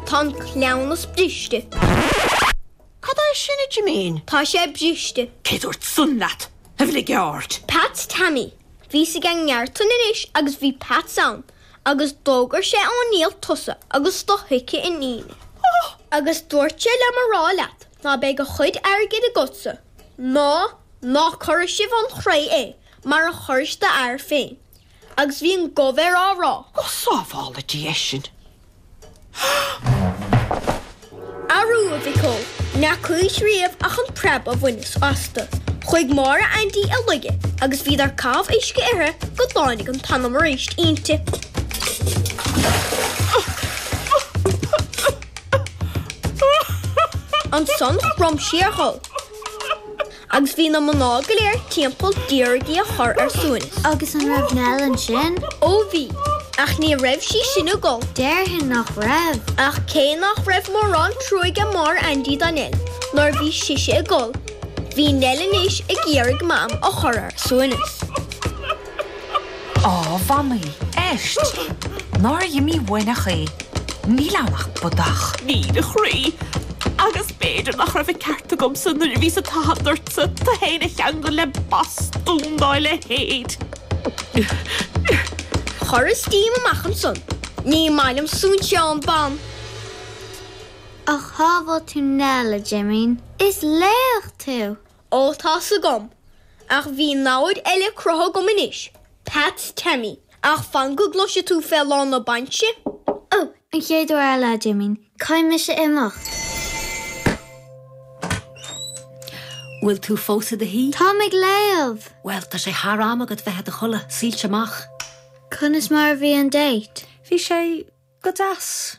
Tá an cleamhnas briste. Cad é sin a Jimín? Tá sé briste. Cé a dúirt san leat, a bhligeaird? Peats Taimí. Bhíos ag an gceártain anois agus bhí Peats ann agus d'fhógair sé don diabhal tusa agus do thoice iníne. Agus dúirt sé liom a rá leat ná beidh a chuid airgid agatsa ná ná cuirfidh sibh 'un chré é mar a chuiris d'fhear féin. agus bhí an gomh air á rá. Go sábhála Dia sinn! Arú, a mhic ó, ní fhacaís riamh ach an preab a bhaineas astu. Chuaigh Máire Aindí i laige agus bhíodar ag caitheamh uisce uirthi go dtáinig an t-anam arís inti. Ansan chrom sí ar ghol. Agus bhí na mná go léir timpeall d'iarraidh í a chur ar suaimhneas. Agus an raibh Nell ansin? Ó bhí. Ach ní raibh sí sin ag gol. Déarfainn nach raibh. Ach cé nach raibh mórán trua ag Máire Aindí do Nell nuair a bhí sise ag gol, bhí Nell anois ag iarraidh Mam a chur ar a suaimhneas. Á, a Mhamaí, éist! Nár imí uainn ach é! Níl ann ach bodach. Níl, a chroí. Agus b'fhéidir nach raibh an ceart agamsa nuair a bhíos ag tathant ortsa tú féin a cheangal le bastún dá leithéid. Chuireas díom amach ansan. Ní maith liom suainseán ban. Ach shábháil tú Nell, a Jimín. Is laoch tú! Ó, tá's agam, ach bhí namhaid eile cruthaithe agam anois, Peats Taimí, ach fan go gcloise tú fé lá na bainise. Ó, an chéad uair eile, a Jimín, caithfidh mise imeacht. Bhfuil tú fós i do shuí? Táim ag léamh! Bhuel, tá sé thar am agat bheith i do chodladh, soilse amach. Conas mar a bhí an date? Bhí sé go deas.